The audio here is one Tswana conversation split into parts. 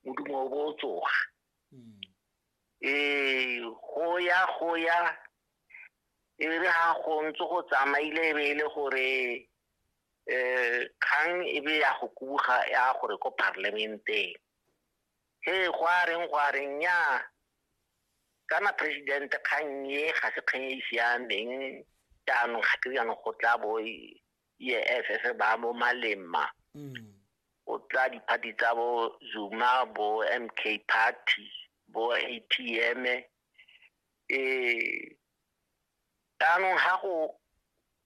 modumo o bo o tsoga ee go ya go ya e re ga go ntse go tsamaile e be e le gore um kgang e be ya go kuga ya gore ko parliamenteng he go a reng go a reng ya kana president kgang e ga se kgang e e siameng jaanong ga ke jaanong go tla bo e, EFF ba mo malemma go tla diphathi tsa bo Zuma bo MK Party bo ATM eh jaanong ga go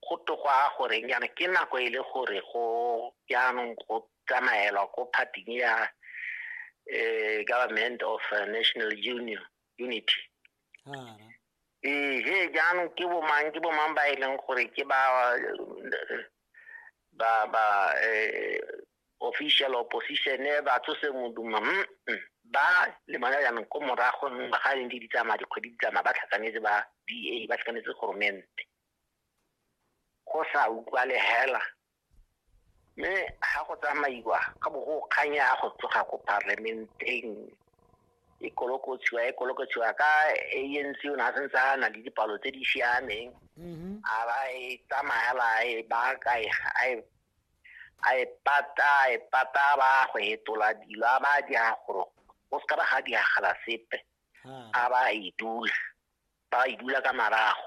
go togwa goreng yana ke nako e le gore go jaanong go tsamaelwa ko phathing ya eh government of national union unity ehe jaanong ke bomang ke bomang ba e leng gore ke ba ba ba eh, official opposition eh, ba tsose moduma mm, mm. ba lemana jaanong ko morago ga e leng di di tsamaya dikgwedi di tsamaya ba tlhakanetse ba da ba tlhakanetse goromente go sa utlwa le hela mme ga go tsamaiwa ka bo go kganya go tsoga ko parliamenteng e kolokotshiwa e kolokotshiwa ka ANC o ne a sentse a na le dipalo tse di siameng mm-hmm. a ba e tsamayela e baka e, a e pata a e pata ba go hetola dilo a ba di a gore go se ka ba ga di agala sepe a ba e dula ba e dula ka marago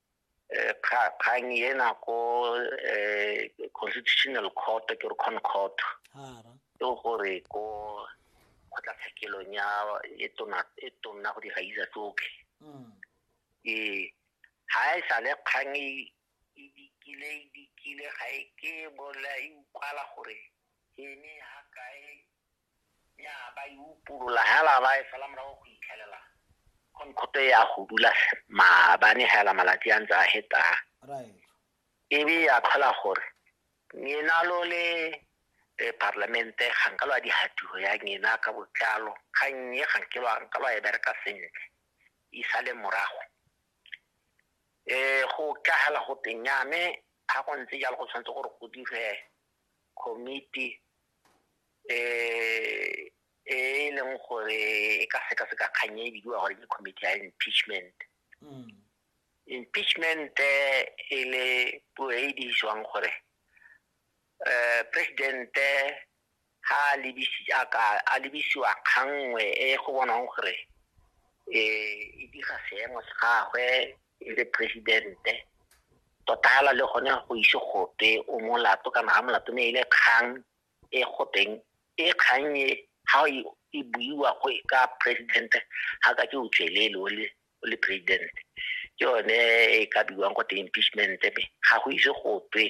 eh, kgang ena ko eh, constitutional court ke re con court ke gore ko kgotlatshekelong ya e tona e go di gaisa tsotlhe mm. ee ga e sa le kgang e, e dikile e dikile ga e ke bola e ukwala gore ke ne ga kae ya ba e upolola hela ba e sala morago go itlhelela khonkhoto ya go dula maabane hela malatsi a ntse a heta e be ya tlhola gore ngena lo le eh, parlamente ga nka lwa dihatiro ya ngena ka botlalo ga nnye ga nke lwa nka lwa e bereka sentle e sale morago um go tla hela go teng yame ga go ntse jalo go tshwanetse gore go dire committee e e leng gore e ka sekaseka kgang e bidiwa gore ke committee ya impeachment mm. impeachment eh, e le puo e e dirisiwang gore um presidente ha a lebisiwa kgangwe e go bonang gore um e dira seemo se gagwe e le presidente tota le gone go ise gope o molato kana ga molato ne e le kgang e go teng e kgang e ha e buiwa go e ka president ha ka ke o tswelele o le o le president ke yone e ka buiwang go teng impeachment me ga go ise go twe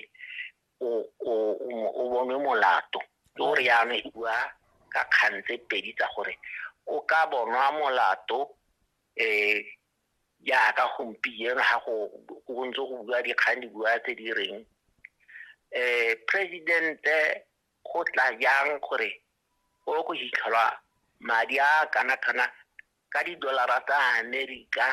o bonwe molato ke gore yana e bua ka kgang tse pedi tsa gore o ka bonwa molato um jaaka gompieno ga go go ntse go bua dikgang di bua tse di reng eh presidente go tla jang gore o go hitlhelwa madi a kana kana ka didolara tsa amerika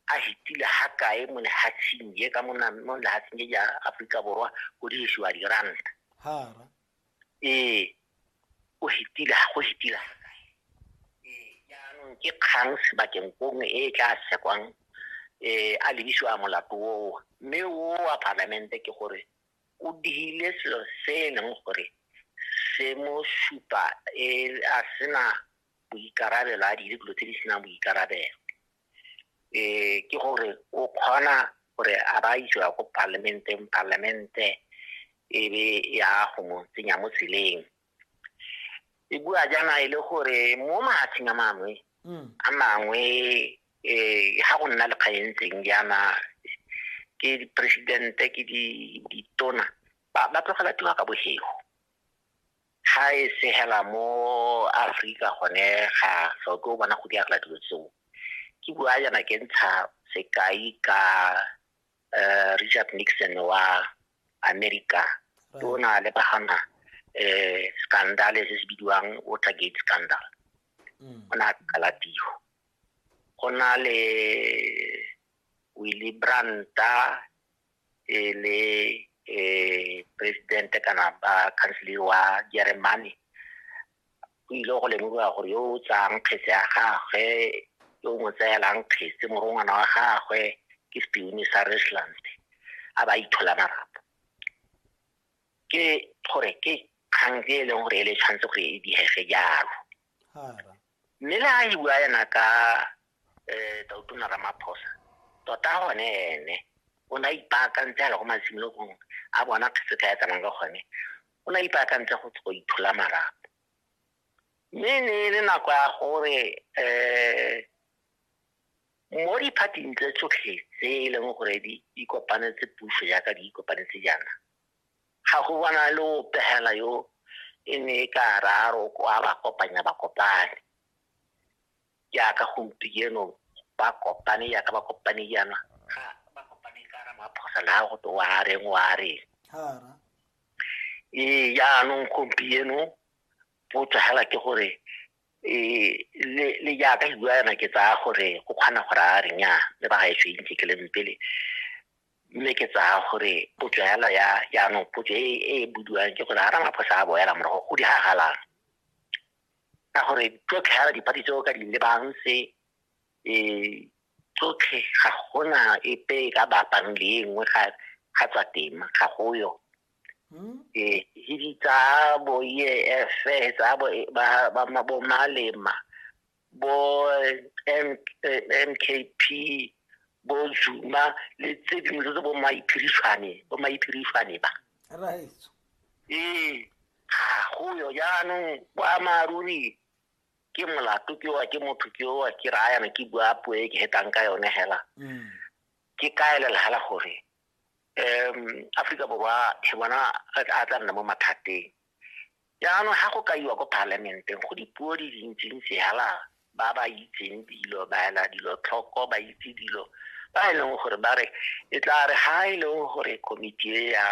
a hitile ha kae mo lehatsheng je ka mo lehatsheng je ja aforika borwa go dirisiwa diranta ee o hetila go hetila jaanong ke kgang sebakeng kongwe e e tla sekwang um eh, a lebisiwa molato oo mme o wa palamente ke gore o digile selo se e leng gore se mo supa e a sena boikarabelo a dire dilo tse di senang boikarabelo um ke gore o kgona gore a ba isiwa ko parliamenteng parliamente e be ya go mo tsenya mo tseleng e bua jaana e le gore mo mahatsheng a mangwe mm. a mangwe um ga go nna le kgaentseng jaana ke presidente ke ditona ba tlogela tiro ka bosego ga e se hela mo Afrika gone ga ga o ke o bona go diagela dilo tseo ke bua yana ke ntsha sekai ka uh, Richard Nixon wa America ke o na le bagana eh scandal se se bidiwang Watergate scandal mm. o na kalatiho go na le Willy Brandt e le um presidente kana ba councilor wa jeremane go ile go lemogiwa gore yo o tsayang kgetse ya gagwe yo o mo tseelang kgetse morongwana wa gagwe ke sepione sa resland a ba ithola marapo ke gore ke kgang e leng gore e le tshwanetse gore e diege jalo Mme le ha e bua ena ka eh Tautona Ramaphosa tota gone ene o ne a ipaakantse a le go masimologong a bona se ka ya tsamang ka gone o ne a ipaakantse go go ithola marapo mme e ne e le nako ya gore eh mo diphathing tse tsotlhe tse e leng gore di di kopanetse puso jaaka di kopanetse jaana Ga go bona le o pegela yo e ne e ka raro kwa ba kopanya ba kopane. Jaaka gompieno ba kopane jaaka ba kopane jaana ga ba kopane ka ramaphosa le ga go te wa reng wa reng. Ee jaanong gompieno potso fela ke gore le jaaka ke bua yana ke tsaya gore go kgona gore a re nnyaa le ba gaetsho e ntse ke leng pele mme ke tsaya gore potso yalo ya jaanong potso e e budiwang ke gore a ramaphosa a boela morago go diragalang ka gore tsotlhe yala dipati tseo ka di lebang se um tsotlhe ga gona epe e ka bapang le e nngwe ga tswa tema ga go yo um hidi tsa bo e f tsa bo e, malema bo mkp bo zuma le tse dingwe tse tse bo maiphirishwane bo maiphirishwane ba ee ga go yo jaanong boammaaruri ke molato ke wa ke motho ke wa ke raya yana ke bua puo e ke hetang ka yone hela mm. ke kaelela hela gore um aforika borwa ke bona a tla nna mo mathateng Jaanong ga go kaiwa ko Palamenteng go dipuo di dintsintsi hala ba ba itseng dilo ba ela dilo tlhoko ba itse dilo ba e leng gore ba re e tla re ga e leng gore komiti e ya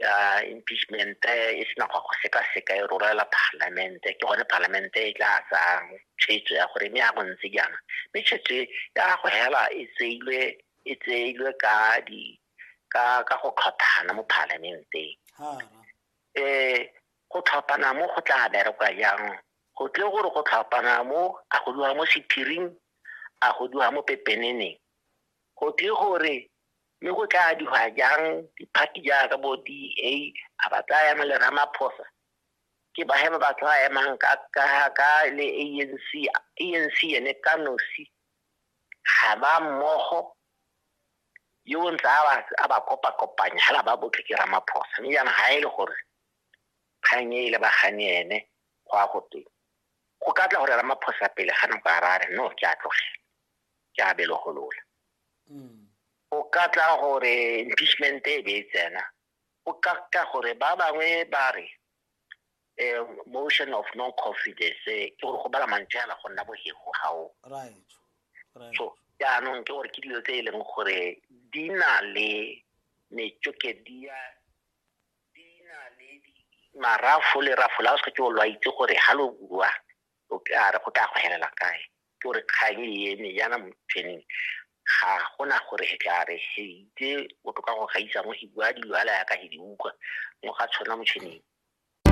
ya impeachment e sena go go sekaseka e rorela palamente ke gone palamente e tla tsang tshwetso ya gore mme ya go ntse jaana mme tshwetso ya go hela e tseilwe e tseilwe ka di ka ka go tlhothana mo palamenteng um go tlhopana mo go tla berekwa jang go tle gore go tlhopana mo a go diwa mo sephiring a go diwa mo pepeneneng go tle gore mme go tla diwa jang diphathi jaaka bo d a a ba tla ema le ramaphosa ke ba he ba ba tla emang ka ka ka le a n c a n c ene ka nosi ga ba mmogo yo o ntse a ba a ba kopakopanya hela ba botlhe ke ramaphosa mme jaanong ga e le gore kgang e e lebagane ene go a go teng go ka tla gore ramaphosa pele ga nako a rare no ke a tlogela ke a belogolola o ka tla gore impeachment e be e tsena o ka ka gore ba bangwe ba re eh, motion of no confidence eh, ke gore go bala mantse ala go nna bohego gao right right so jaanong ke gore ke dilo tse e leng gore di na le metsokedia di na le di- marafo le rafo la o seke o lo a itse gore ga lo bua o ka re go tla go helela kae ke gore kgang e eme jaana motšheneng ga gona gore he tla re he itse botoka go gaisa mo he bua dilo ala yaka he di utlwa mo ga tshwana motšheneng